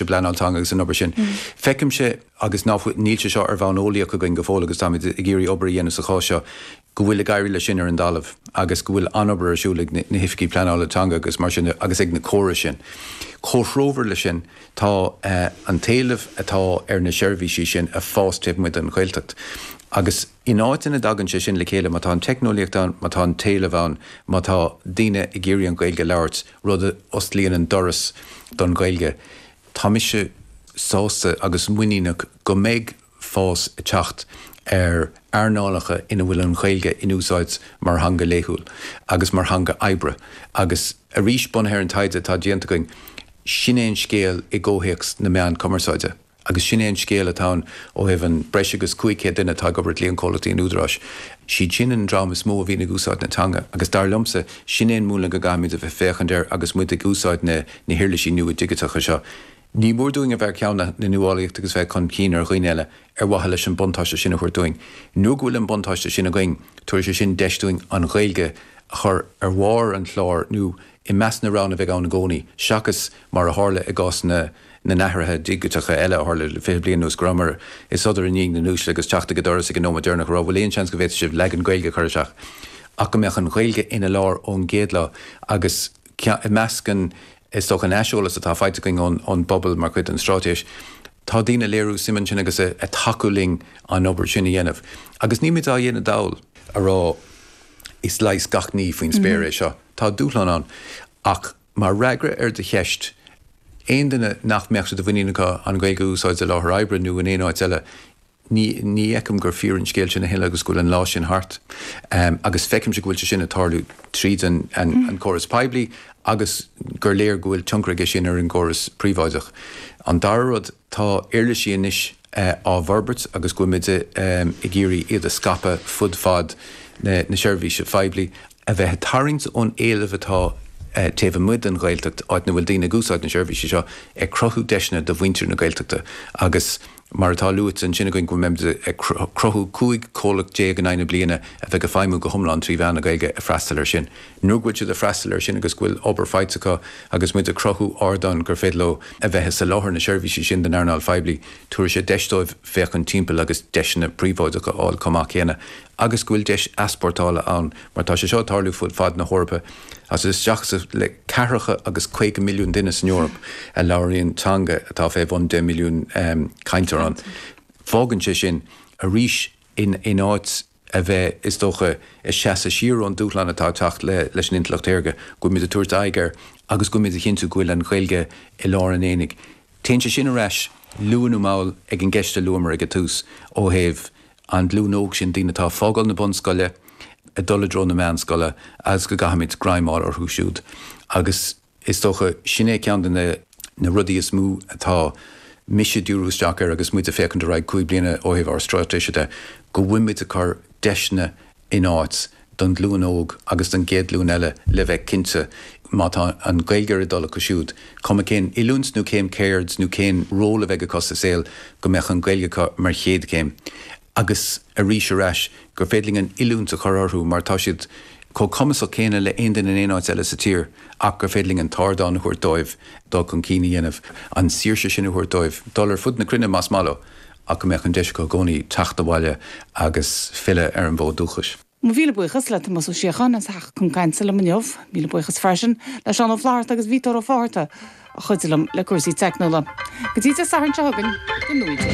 i bpleanáil teanga agus san obair sin. Feicimse, agus níl sé seo ar bhonn eolaíoch againn go fóill agus táimid ag iarraidh obair a dhéanamh sa spás seo, go bhfuil ag éirí leis sin ar an dtalamh agus go bhfuil an-obair ar siúl ag na hoifigigh pleanála teanga agus mar sin agus ag na córais sin. Comhthreomhar leis sin tá an t-éileamh atá ar na seirbhísí sin a' fás taobh amuigh den Ghaeltacht agus in áiteanna a dtagann sé sin le chéile, má tá an teicneolaíocht ann, má tá an t-éileamh ann, má tá daoine ag iarraidh an Ghaeilge a labhairt, rud a osclaíonn an doras don Ghaeilge. Tá mise sásta agus muiníneach go mbeidh fás ag teacht ar earnálacha ina bhfuil an Ghaeilge in úsáid mar theanga laethúil agus mar theanga oibre agus, arís bunaithe ar an taighde atá déanta againn, sin é an scéal i gcomhthéacs na meán cumarsáide. Agus sin é an scéal atá ann ó thaobh an breis agus 500 duine atá ag obair i gcliantchomhlachtaí an Údaráis. Siad sin an dream is mó a bhíonn ag úsáid na teanga agus dar liomsa, sin é an múnla go gcaithfimid a bheith féachaint air agus muid ag úsáid na na huirlisí nua digiteacha seo. Ní mór dúinn a bheith ar cheann na nuálaíochta agus bheith chun cinn ar dhaoine eile ar mhaithe leis an buntáiste sin a thabhairt dúinn. Nuair go bhfuil an buntáiste sin againn, tabharfaidh sé sin deis dúinn an Ghaeilge a chur ar bharr an chláir nó, i measc na roghanna a bheidh ann i gcónaí, seachas mar a tharla i gcás na n-athruithe digiteacha eile a tharla le fiche bliain anuas, go rabhamar i sodar i ndiaidh na n-uaisle agus teacht ag an doras ag an nóiméad deireanach a rá, 'bhfuil aon seans go bhféadfadh sibh leagan Gaeilge a chur isteach? ach go mbeadh an Ghaeilge ina lár ón gcéad lá agus i measc an, is dócha, an aiseolais atá faighte againn ón bpobal mar chuid den straitéis, tá daoine ag léiriú suim ansin agus ag tacú linn an obair sin a dhéanamh. Agus nílimid á dhéanamh dall ag rá, 'is leigheas gach ní faoin spéir é seo'. Tá dúshlán ann. Ach mar fhreagra ar do cheist, aon duine nach mbeadh sé de mhuinín acu an Ghaeilge a úsáid i láthair oibre nó in aon áit eile, ní fheicim gur fíor an scéal sin a thuilleadh agus go bhfuil an lá sin thart. Agus feicimse go bhfuil sé sin ag tarlú tríd an gcóras poiblí agus gur léir go bhfuil tionchar aige sin ar an gcóras príobháideach. An dara rud, Tá uirlisí anois á bhforbairt agus go bhfuilimid ag iarraidh iad a scaipeadh fud fad na seirbhíse phoiblí, a bheith ag tarraingt ón éileamh atá taobh amuigh den Ghaeltacht, áit na bhfuil daoine ag úsáid na seirbhísí seo, ag cruthú deiseanna do mhuintir na Gaeltachta agus mar atá luaite ansin againn go mbeimid ag cruthú 15 comhlacht in aghaidh na bliana a bheidh ag feidhmiú go hiomlán trí mheán na Gaeilge ag freastal air sin. nuair go bhfuil siad ag freastal air sin agus go bhfuil obair faighte acu agus muid ag cruthú ardáin gur féidir leo a bheith ag soláthar na seirbhísí sin don earnáil phoiblí, tabharfaidh sé deis dóibh féachaint timpeall agus deiseanna príobháideacha a fháil chomh maith céanna agus go bhfuil deis easpórtála ann mar tá sé seo ag tarlú fud fad na hEorpa agus isteach is amach le ceathracha nó agus caoga milliún duine san Eoraip a labhraíonn teanga atá fé bhun deich milliún cainteoir ann. Fágann sé sin arís in áit. a bheith, is dócha, ag seasamh siar ón dúshlán atá ag teacht leis an Intleacht Shaorga, go bhfuilimid ag tabhairt aghaidh air agus go bhfuilimid ag cinntiú go bhfuil an Ghaeilge i lár an aonaigh. Téann sé sin ar ais, luath nó mall, ag an gceist a luamar ag an tús ó thaobh an ghlúin óg sin daoine atá ag fágáil na bunscoile ag dul i dtreo na meánscoile agus go gcaithfimid greim a fháil orthu siúd agus Is dócha, sin é ceann de na rudaí is mó atá mise ag díriú isteach air agus muid ag féachaint ar aghaidh cúig bliana ó thaobh ár stráitéise de, go bhfuil muid ag cur deiseanna in áit don ghlúin óg agus don gcéad ghlúin eile le bheith cinnte, má tá an Ghaeilge ar a dtoil acu siúd, cuma cén oiliúint nó cén ceird nó cén ról a bheidh acu sa saol, go mbeadh an Ghaeilge acu mar chéad chéim. agus arís ar ais, gur féidir linn an oiliúint a chur orthu mar tá siad chomh cumasach céanna le haon duine in aon áit eile sa tír ach gur féidir linn an t-ardán a thabhairt dóibh dul chun cinn a dhéanamh, an saoirse sin a thabhairt dóibh dul ar fud na cruinne más maith leo ach go mbeadh an deis acu i gcónaí teacht abhaile agus filleadh ar an bhfód dúchais. Míle buíochas le Tomás Ó Síocháin as a theacht chun cainte liom inniu. Míle buíochas freisin le Seán Ó Flaithearta agus Peter Ó Fátharta a chuidigh liom le cúrsaí teicniúla. Go dtí Dé Sathairn seo chugainn, go n-uaigh Dé.